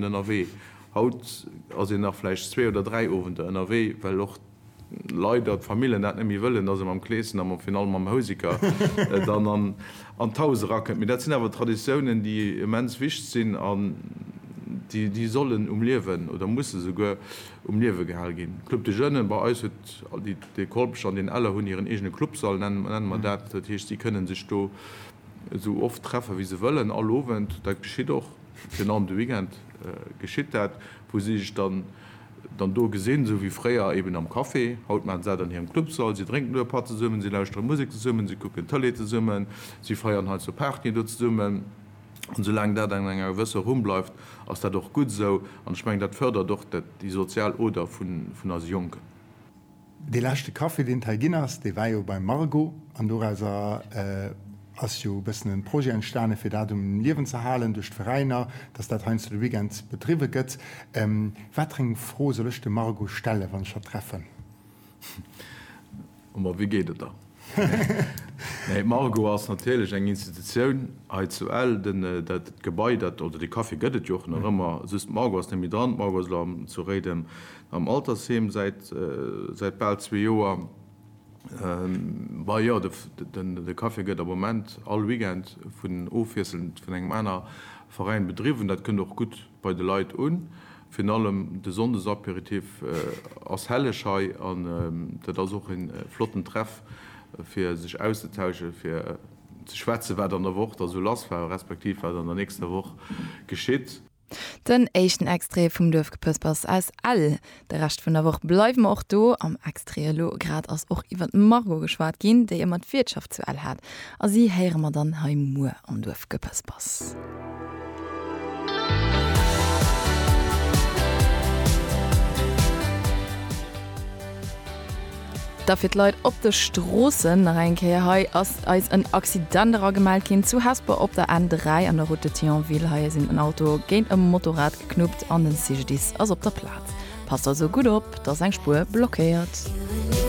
ënnerwee. Haut ass een nach vläicht zwee oder dräi Owender ënnerwee, well och leider d'Famillen dat net méi wëllen, dass ee mam Kleeschen a virun allem mam Houseker dann an d'Haus erakënnt. Mee dat sinn awer Traditiounen, déi immens wichtig sinn an déi sollen um Liewen, oder musse souguer um Liewe gehal ginn. Club des Jeunes, bei eis huet de Kolpech an den Eller hunn hiren eegene Clubsall, nenne mer dat. Dat heescht, si kënnen sech do esou oft treffe wéi se wëllen, all Owend. Dat geschitt och. Virun allem de Weekend geschitt dat, wou si sech dann do gesinn, esou wéi fréier eben am Café. Haut maachen se dat an hirem Clubsall, si drénken do e Patt zesummen, si lauschtere Musek zesummen, si kucken Tëlee zesummen, si feieren heiansdo Partyen do zesummen. An esoulaang dat an enger gewësser Rumm bleift, ass dat och gutt esou. An ech mengen, dat fërdert och déi sozial Oder vun eise Jonken. Dee leschte Café deen et hei ginn ass, dee war jo beim Margo an dorauser ass jo e bëssen e Projet entstanen fir dat um Liewen ze halen duerch d'Veräiner, dass dat heiansdo de Weekend bedriwwe gëtt. Watereng Fro soll ech dem Margo stellen wann ech hatt treffen? Emma wéi geet et da? Nee, Margo ass natierlech eng Institutioun hei zu Ell. Den, dat Gebai, dat, oder de Café gëtt et jo och nach ëmmer, just d'Margo ass net méi dran. D'Margo ass elo zu Réiden am Altersheem säit, säit bal zwee Joer. Bah jo, de, den, de Café gëtt am Moment all Weekend vun, ofwiesselnd vun engem aner Veräin bedriwwen. Dat kënnt och gutt. bei de Leit un. Virun allem de Sonndesapéritif ass helleg hei an dat ass och een flotten Treff fir sech auszetauschen, fir ze schwätzen wat an der Woch da sou lass war, respektiv wat an der nächster Woch geschitt. Den éischten Extrait vum Duerfgepëspers aus Ell. De Rescht vun der Woch bleiwe mer och do. Am Extrait elo grad ass och iwwer d'Margot geschwat ginn, déi ëmmer d'Wiertschaft zu Ell hat. A si héiere mer dann hei muer am Duerfgepëspers. Da fir d'Leit op de Stroossen nach eng Kéier. Hei ass eis en Accident eragemellt ginn zu Hesper op der N3 an der Route de Thionville. Hei sinn en Auto géint e Motorrad knuppt an den CGDIS ass op der Platz. Passt also gutt op, dass eng Spuer blockéiert.